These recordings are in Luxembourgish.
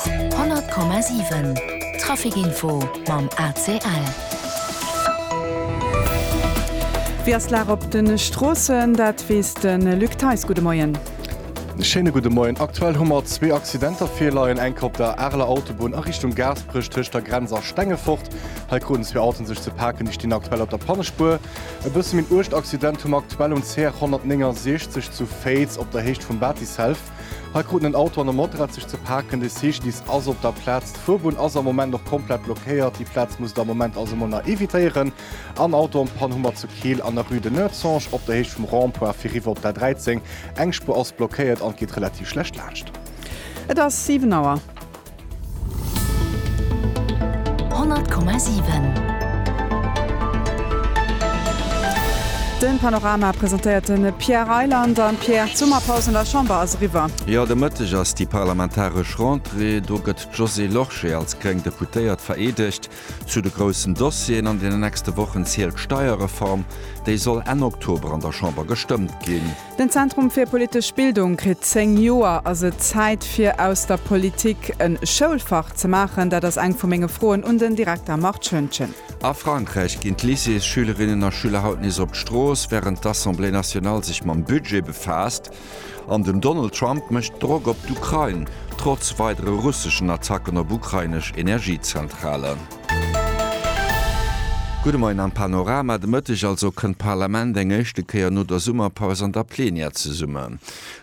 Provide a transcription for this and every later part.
100,7 Trafic Info mam ACL. Wéi ass d'Lag op de Stroossen? Dat weess de Luc Theis. Gudde Moien. Schéine gudde Moien. Aktuell hu mer zwee Accidenter virleien, enke op der Areler Autobunn a Richtung Gaasperech tëscht der Grenz a Stengefort. Hei kruten zwee Autoen sech ze paken, déi stinn aktuell op der Pannespuer. E bësse méi en uergt Accident hu mer aktuell um CR 169 zu Féiz op der Héicht vum Batticelf. Hei kruten en Auto an e Motorrad sech ze paken. De CGDIS ass op der Plaz. D'Fuerbunn ass am Moment nach komplett blockéiert. Déi Plaz musst der am Moment also mol nach evitéieren. En Auto an d'Pann hu mer zu Keel an der Rue de Noertzange op der Héicht vum Rond-point fir riwwer op d'A13. Eng Spuer ass blockéiert an et geet relativ schlecht laanscht. Et ass 7 Auer. 100,7. Den Panorama presentéiert den Pierre Reyland an Pierre, d'Summerpaus an der Chamber ass eriwwer. Jo, de Mëtteg ass déi parlamentaresch Rentrée. Do gëtt d'Josée Lorsché als gréng Deputéiert vereedegt. Zu de groussen Dossieren an deenen nächste Wochen zielt d'Steierreform. Déi soll Enn Oktober an der Chamber gestëmmt ginn. Den Zentrum fir politesch Bildung kritt 10 Joer. Ass et Zäit fir aus der Politik en Schoulfach ze maachen? Dat ass eng vu menge Froen un den Direkter Marc Schoentgen. A Frankräich ginn d'Lycéesschülerinnen a Schüler haut nees op d'Strooss, wärend d'Assemblée nationale sech mam Budget befaasst. An den Donald Trump mécht Drock op d'Ukrain, trotz weidere russeschen Attacken op ukrainesch Energiezentralen. Gudde Moien am Panorama. De Mëtteg also kënnt d'Parlament eng éischte Kéier no der Summerpaus an der Plenière zesummen.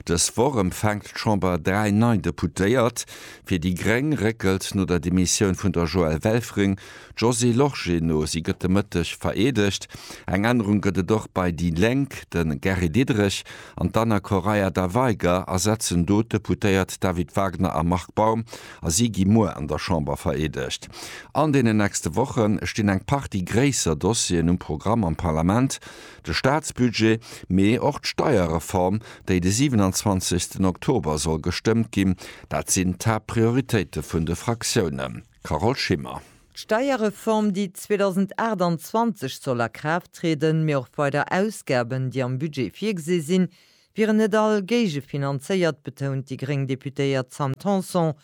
Dës Woch empfänkt d'Chamber dräi nei Deputéiert. Fir déi gréng réckelt no der Demissioun vun der Joëlle Welfring d'Josée Lorsché no. Si gëtt de Mëtteg vereedegt. Eng Ännerung gëtt et och bei déi Lénk, De Gary Diderich an d'Anna Correia da Veiga ersetzen do d'Deputéiert David Wagner a Marc Baum a si gi muer an der Chamber vereedegt. An deenen nächste Woche stinn eng Partie gréisser Dossieren um Programm am Parlament, de Staatsbudget, mee och d'Steierreform, déi de 27 Oktober soll gestëmmt ginn. Dat sinn d'Haaptprioritéite vun de Fraktiounen. Carole Schimmer. D'Steierreform, déi 2028 soll a Kraaft trieden, mee och weider Ausgaben, déi am Budget virgesi sinn, wieren net all géigefinanzéiert, betount déi gréng Deputéiert Sam Tanson.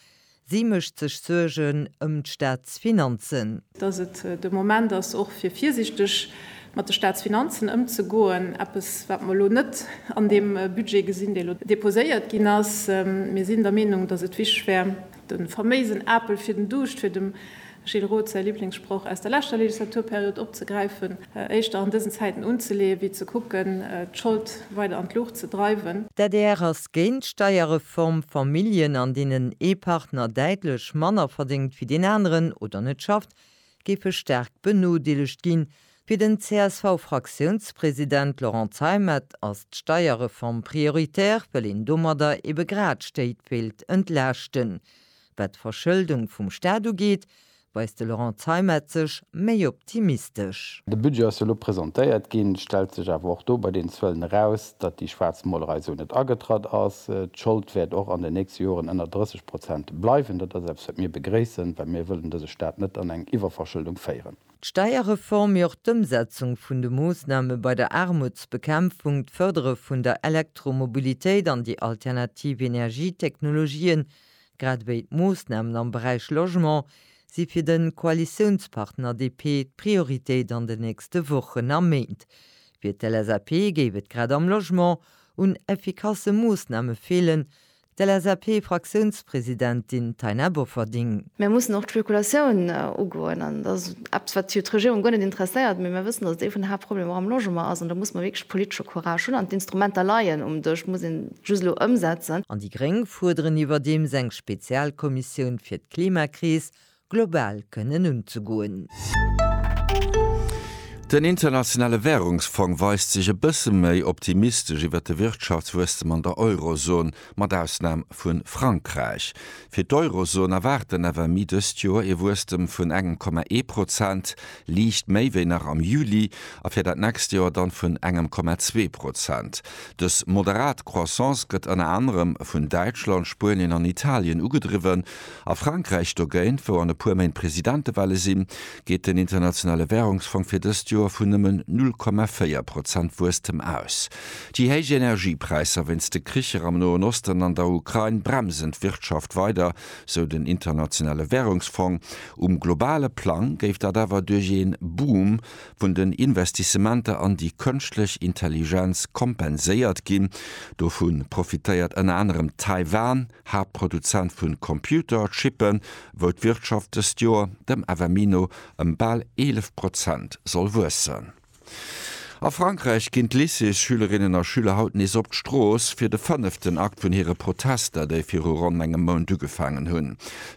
Si mécht sech Suergen ëm d'Staatsfinanzen. Datt et de Moment ass och fir virsiichteg mat de Staatsfinanzen ëmzegoen, eppes wat mer elo net an deem Budget gesinn, dee elo deposéiert ginn ass. Mir sinn der Meenung, datt et wichteg wär, den faméisen Apel fir den Duuscht, fir dem Gilles Roth säi Liblingssproch aus der leschter Legislaturperiod opzegräifen, éischter an dësen Zäiten unzeleeën, wéi ze kucken, d'Schold weider an d'Luucht ze dreiwen. D'adr ass géint d'Steierreform. Familljen, an deenen ee Partner däitlech manner verdéngt wéi deen aneren oder net schafft, géife staark benodeelegt ginn. Fir den CSV-Fraktiounspresident Laurent Zeimet ass d'Steierreform prioritär, well een domadder ebe grad Stéit wéilt entlaaschten. Wat d'Verschëldung vum Staat ugeet, weist de Laurent Zeimet sech méi optimistesch. De Budget ass jo elo presentéiert ginn, stellt sech awer och do bei den Zuelen eraus, Datt déi Schwaarzmolerei esou net agetratt ass, d'Schold wäert och an den nächste Joren ënner 30 Prozent bleiwen. Dat ass eppes, wat mir begréissen, well mir wëllen dëse Staat net an eng Iwwerverschëldung féieren. D'Steierreform, mee och d'Ëmsetzung vun de Moossname bei der Aarmutsbekämpfung, d'Fërdere vun der Elektromobilitéit an déi alternativ Energietechnologien, grad ewéi d'Moossnamen am Beräich Logement, si fir de Koalitiounspartner DP d'Prioritéit an den nächste Wochen a Méint. Fir d'LSAP géif et grad am Logement un effikasse Moossname feelen, d'LSAP-Fraktiounspresidentin Taina Bofferding. Mir mussen och d'Spekulatioun ugoen an dat ass eppes, wat jo d'Regierung guer net interesséiert, mee mir wëssen, datt et ee vun de Haaptproblemer och am Logement ass an do muss mer wierklech politesche Courage hunn an d'Instrumenter leien um Dësch, muss een just elo ëmsetzen. An déi Gréng fuerderen iwwerdeems eng Spezialkommissioun fir d'Klimakris, global kënnen unzegoen. Den internationale Wärungsfong weist sech e bësse méi optimistesch iwwert de Wirtschaftswuesstem an der Eurozon, mat Ausnam vu Frankräich. Fir d'Eurozon erwaart den FMI dëst Joer ee Wuesstem vun engem Komma ee Prozent, liicht méi wéi nach am Juli, a fir dat nächst Joer dann vun engem Komma zwee Prozent. Dës moderat Croissance gëtt ënner anerem vun Däitschland, Spuenien an Italien ugedriwwen. A Frankräich dogéint, wou an e puer Méint Presidentewale sinn, geet den Internationale Währungsfong fir dëst Joer vun nëmmen 0,4 Prozent Wuesstem aus. Déi héich Energiepräisser wéinst de Kricher am Noen Osten an der Ukrain bremsen d'Wirtschaft weider, sou den Internationale Währungsfong. Um globale Plang géif dat awer duerch ee Boom vun den Investissementer an déi Kënschtlech Intelligenz kompenséiert ginn. Dovu profitéiert ënner anerem Taiwan. Haaptproduzent vu Computer-Chippe wou d'Wirtschaft dëst Joer dem FMI no ëm bal 11 Prozent soll wuessen. A Frankräich ginn d'Lycées-Schülerinnen a Schüler haut nees op d'Strooss fir de fënneften Akt vun hire Protester, déi viru ronn engem Mount ugefaangen hunn.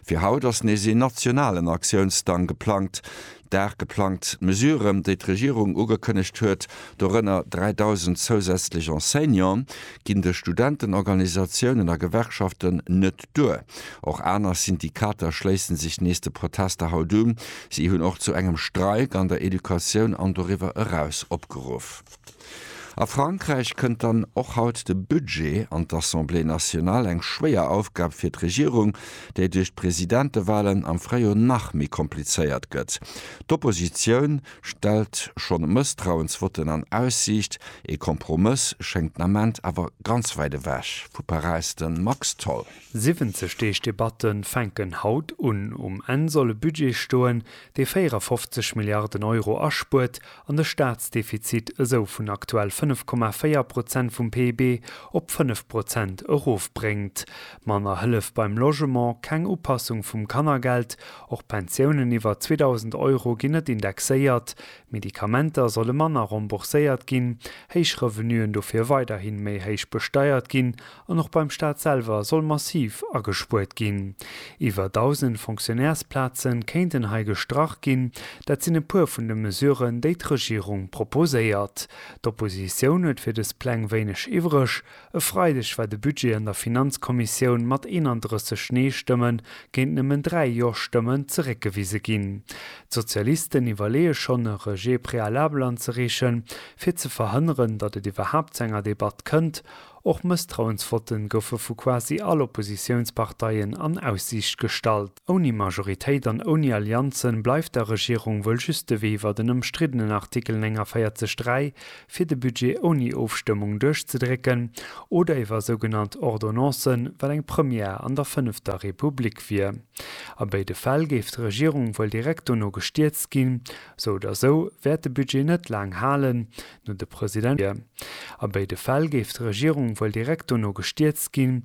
Fir haut ass nees een nationalen Aktiounsdang geplangt. Dag geplangt Mesuren, déi d'Regierung ugekënnegt huet, dorënner 3.000 zousätzlech Enseignanten, ginn de Studentenorganisatiounen a Gewerkschaften net duer. Och aner Syndikater schléissen sech nees de Protester haut un. Si hunn och zu engem Streik an der Educatioun an doriwwer eraus opgeruff. A Frankräich kënnt dann och haut de Budget an d'Assemblée nationale, eng schwéier Aufgab fir d'Regierung, déi duerch d'Presidentewalen am Fréijoer nach méi komplizéiert gëtt. D'Oppositioun stellt schonn Mësstrauensvotten an Aussiicht, ee Kompromëss schéngt den Ament awer ganz wäit ewech. Vu Paräis de Max Tholl. 70 Deeg Debatte fänken haut un. Um Enn soll e Budget stoen, dee 54 Milliarden Euro aspuert an de Staatsdefizit esou vun aktuell 5,4 Prozent vum PIB op 5 Prozent erofbréngt. Manner Hëllef beim Logement, keng Upassung vum Kannergeld, och Pensiounen iwwer 2.000 Euro ginn net indexéiert, Medikamenter solle manner rembourséiert ginn, héich Revenuen dofir weiderhi méi héich besteiert ginn An och beim Staat selwer soll massiv agespuert ginn. Iwwer 1.000 Fonctionnairesplaze kéinten hei gestrach ginn. Dat sinn e puer vun de Mesuren, déi d'Regierung proposéiert. D'Oppositioun huet fir dës Pläng wéineg iwwreg. E Freideg war de Budget an der Finanzkommissioun mat 31 Nee-Stëmme géint nëmmen 3 Jo-Stëmmen zeréckgewise ginn. D'Sozialisten iwwerleeë schonn, e Rejet préalable anzereechen, fir ze verhënneren, datt et iwwerhaapt zu enger Debatt kënnt. Och Mësstrauensvotten goufe vu quasi all Oppositiounsparteien an Aussiicht gestallt. Ouni Majoritéit an ouni Allianzen bleift der Regierung wuel just de Wee iwwer den ëmstriddenen Artikel 49 3, fir de Budget ouni Ofstëmmung duerchzedrécken, oder iwwer sougenannt Ordonnancen, wat eng Première an der fënnefter Republik wier. A béide Fäll géif d'Regierung wuel direkt dono gestierzt ginn. Sou oder sou wäert de Budget net laang halen, no de President wier. A béide Fäll géif d'Regierung wuel direkt dono gestierzt ginn,